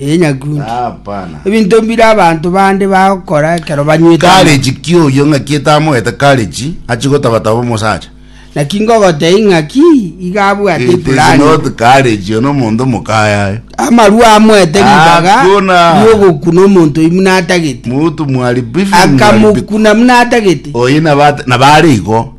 Ee, nyakundi. Ah, hapana. Ebinto mbire abanto bande bagokora ekero banywete amagena. Courage ki oyio ng'aki etamoete courage achi gotabataba omosacha. Naki ngogotebia ing'aki iga abwate It is ifulani. not courage oyo nomonto mokayaye. Amarua amoete ribaga Hakuna. riogokuna omonto oyio buna atagete. Mutu mwari bifu Akamokuna buna atagete. Oyi nabate nabare igo.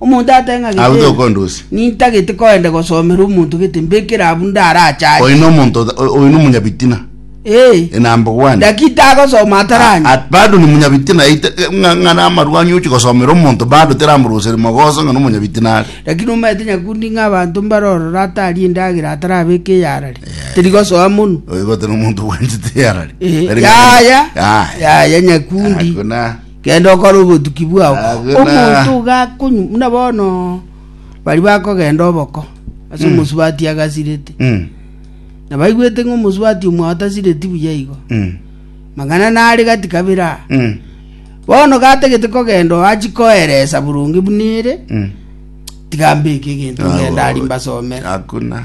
Omonto ateng'a Abwo gete, tokondusia. nintagete koenda gosomera omonto gete, mbekere abwo ndarachache. Oino omonto ota- o- oino omonyabitina Eh, e number one dakita agosoma ataranya. At- bado ni munyabitina ite- ng'a- ng'a namarwani ochi gosomera omonto bado teramoroseri mogoso ng'a nomonyabitina are Lakini omanyete nyakundi ng'a abanto mbarorora ataria endagera atarabeka eyarari. Teri gosoa mono. oigote nomonto bwanchete yarari Eh, yaya, yaya nyakundi. Hakuna. Genda okore obotuki bwao. Agena. Omonto ogakonywa buna bono baria bakogenda oboko ase omosubati agasirete, Mm. na baigwete ng'a omosubati omwao tasireti buya igo, Mm. mang'ana nare gati kabere aa. Mm. Bono gatagete kogenda oo achi koeresa boronge buna ere, Mm. tiga mbeke egento ngende aria mbasomere. Hakuna.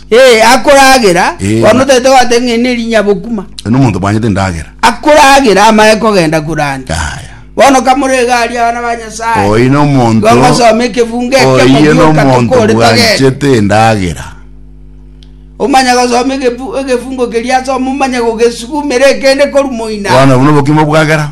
Ee, akoragera, Ee, bono na- tete gwateba ng'a eri nerinyabokuma. Eno omonto bwanyete endagera. Akoragera amaye kogenda kurande. Yaya. Bono kamore iga aria abana ba Nyasaye. Oyi na omonto. Igo ngosoma ekefungo ekio Oyi na mobuoka omonto tokore togende. bwanchete endagera. Omanya gosoma egefu- egefungo keria asoma omanye gogesugumera ekende korwa moina. Bono buna obokima bwagera.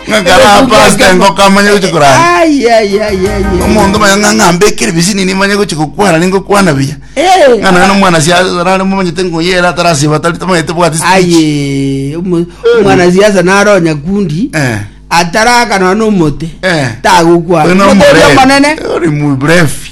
Ng'a karaa pastor engoko amanye gochia korara. Ai, ai, ai, ai, ai. Omonto manya ng'a ng'a ambekere ebisini nimanye gochia gokwana ningokwana buya. Eh, Ng'a naye nomwana sia arare momanyete ngoyere atarasiba atari tamanyete bwati speech. aye omo- omwana siasa naro nyakundi Eh. atarakanwa nomote Eh. tagokwana Oyo no Motebi mrefu. omonene Ori mrefu.